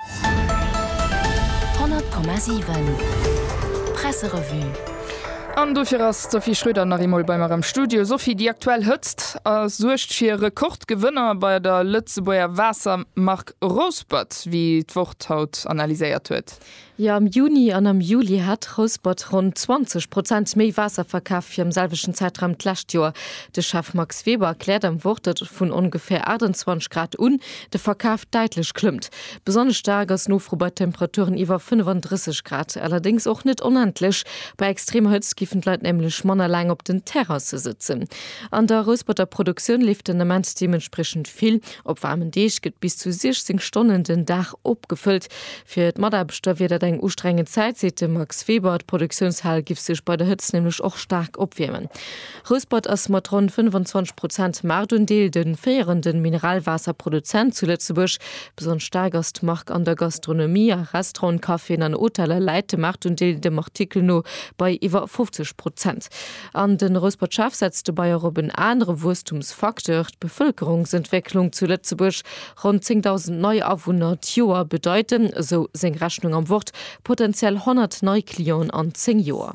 100,7 Presserevue An dofir ass d'Sophie Schröder nach eemol bei mer am Studio. Sophie, déi aktuell Hëtzt a suergt fir Rekordgewënner bei der Lëtzebuerger Waassermark Rouspert, wéi d'Wort haut analyséiert huet. Jo, am Juni an am Juli hat Rouspert ronn 20 Prozent méi Waasser verkaf wéi am selwechten Zäitraum d'lescht Joer. De Chef Max Weber erkläert am Wort, datt et vun ongeféier 28 Grad un de Verkaf däitlech klëmmt. Besonnesch staark ass d'Nofro bei Temperaturen iwwer 35 Grad, allerdéngs och net onendlech. Bei extremer Hëtzt giffen d'Leit nämlech manner laang op den Terrasse sëtzen. An der Rousperter Produktioun leeft den Ament deementspriechend vill. Op waarmen Deeg gëtt bis zu 16 Stonnen den Dag opgefëllt. Fir d'Mataarbechter wier dat eng ustrengend Zäit, seet de Max Weber. D'Produktiounshal giff sech bei der Hëtzt nämlech och staark opwiermen. Rouspert ass mat ronn 25 Prozent Maartundeel de féierende Mineralwaasserproduzent zu Lëtzebuerg. Besonnesch staark ass d'Mark an der Gastronomie, a Restauranten, Caféen an Hoteller läit de Maartundeel dem Artikel no bei iwwer 50 Prozent. An de Rouspert-Chef setzt dobäi och op en anere Wuesstumsfacteur, d'Bevëlkerungsentwécklung zu Lëtzebuerg. Ronn 10.000 nei Awunner d'Joer bedeiten, esou seng Rechnung am Wort, potenziell 100 nei Clienten an 10 Joer.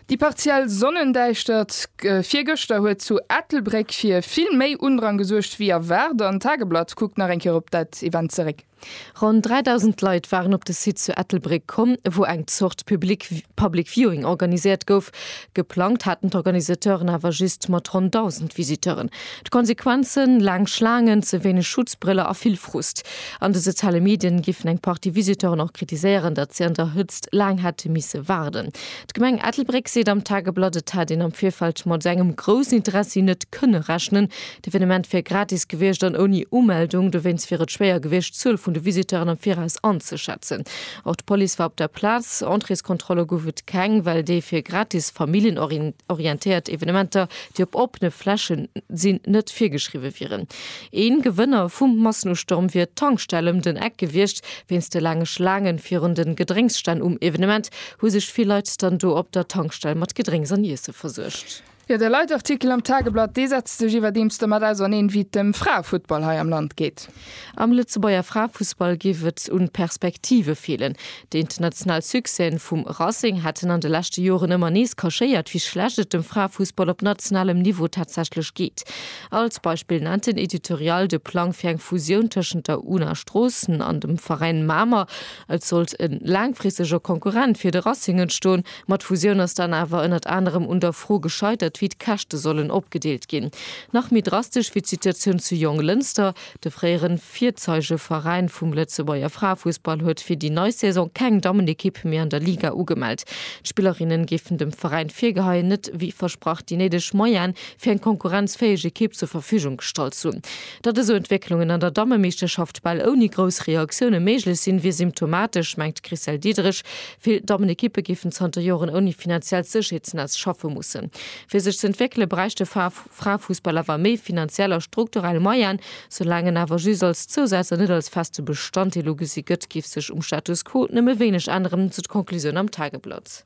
Déi partiell Sonnendäischtert virgëschter huet zu Ettelbréck fir vill méi Undrang gesuergt wéi erwaart an d'Tageblatt kuckt nach eng Kéier op dat Event zeréck. Ronn 3.000 Leit waren op de Site zu Ettelbréck komm, wou eng Zort Public Viewing organiséiert gouf. Geplangt haten d'Organisateuren awer just mat ronn 1.000 Visiteuren. D'Konsequenzen, laang Schlaangen, ze wéineg Schutzbriller a vill Frust. An de soziale Medien giffen eng Partie Visiteuren och kritiséieren, datt si an der Hëtzt laang hätte misse waarden. D'Gemeng Ettelbréck seet am Tageblatt, et hätt een am Virfeld mat esou engem groussen Interessi net kënne rechnen. D'Evenement wier gratis gewiescht an ouni Umeldung. Dowéinst wier et schwéier gewiescht, d'Zuel vun de Visiteuren am Viraus anzeschätzen. Och d'Police war op der Plaz. Entréeskontrolle gouf et keng, well déi fir gratis familljenorientéiert Evenementer déi op oppene Fläche sinn, net virgeschriwwe wieren. Ee Gewënner vum Massenustourm wier d'Tankstell ëm den Eck gewiescht. Wéinst de laange Schlaangen virun den Gedrénksstänn um Evenement hu sech vill Leit dann do op der Tankstell mat Gedrénks an Iesse versuergt. Jo, de Leitartikel am Tageblatt, dee setzt sech iwwerdeems domat auserneen, wéi et dem Fraefuttball hei am Land geet. Am Lëtzebuerger Fraefussball géif et un Perspektive feelen. Déi international Succèsen vum Racing hätten an de leschte Joren ëmmer nees kaschéiert, wéi schlecht et dem Fraefussball op nationalem Niveau tatsächlech geet. Als Beispill nennt den Editorial de Plang fir eng Fusioun tëschent der Una Stroossen an dem Veräin Mamer. Et sollt e laangfristeger Konkurrent fir de Racing entstoen. Ma d'Fusioun ass dann awer ënnert anerem un der Fro gescheitert, wéi d'Käschte sollen opgedeelt ginn. Nach méi drastesch wier d'Situatioun zu Jonglënster. De fréiere Virzeigeveräin vum Lëtzebuerger Fraefussball huet fir déi nei Saison keng Dammenekipp méi an der Liga ugemellt. D'Spillerinnen géifen dem Veräin virgeheien, net wéi versprach déi néideg Moyene fir eng konkurrenzfäeg Ekipp zur Verfügung gestallt ze hunn. Datt esou Entwécklungen an der Dammemeeschterschaft bal ouni grouss Reaktioune méiglech sinn, wier symptomatesch, mengt d'Chricelle Diederich, Vill Dammenekippe géifen zanter Joren ouni finanziellt Sécherheetsnetz schaffe mussen. Fir sech ze entwéckele bräicht de Fraefussball awer méi finanziell a strukturell Moyen. Soulaang en awer just als Zousaz an net als feste Bestanddeel ugesi gëtt, géif sech um Status quo nëmme wéineg änneren, sou d'Conclusioun am Tageblatt.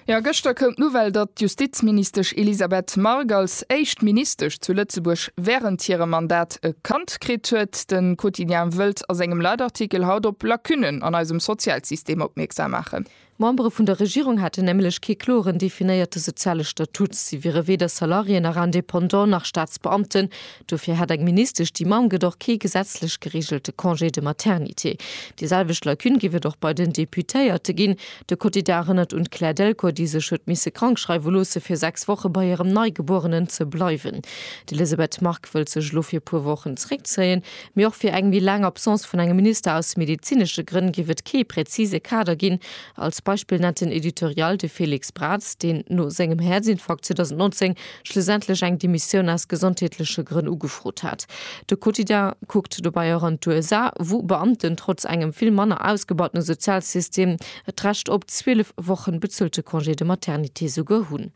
Jo, gëschter koum d'Nouvelle, datt d'Justizministesch Elisabeth Margue als éischt Ministesch zu Lëtzebuerg wärend hirem Mandat e Kand Recht kritt huet. De Quotidien wëllt a sengem Leitartikel haut op Lacunen an eisem Sozialsystem opmierksam maachen. D'Membere vun der Regierung hätten nämlech kee kloren definéierte soziale Statut. Si wiere weder Salarié nach Indépendant nach Staatsbeamten. Dofir hätt eng Ministesch, déi Mamm gëtt, och kee gesetzlech gereegelte Congé de maternité. Déi selwecht Lacune géif et och bei den Deputéierte ginn. De Quotidien erënnert un d'Claire Delcourt, déi sech huet misse krankschreiwe loosse fir 6 Woche bei hirem Neigebuerenen ze bleiwen. D'Elisabeth Margue wëllt sech elo fir e puer Wochen zeréckzéien. Mee och fir eng méi laang Absence vun engem Minister aus medezinesche Grënn géif et kee präzise Kader ginn. Als Beispill nennt den Editorial de Félix Braz, deen no sengem Häerzinfarkt 2019 schlussendlech eng Demissioun aus gesondheetleche Grënn ugefrot hat. De Quotidien kuckt dobäi och an d'USA, wou Beamten trotz engem vill manner ausgebautene Sozialsystem et d'Recht op 12 Wochen bezuelte Congé de maternité souguer hunn.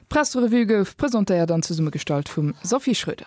D'Pressrevue gouf presentéiert an zesummegestallt vum Sophie Schröder.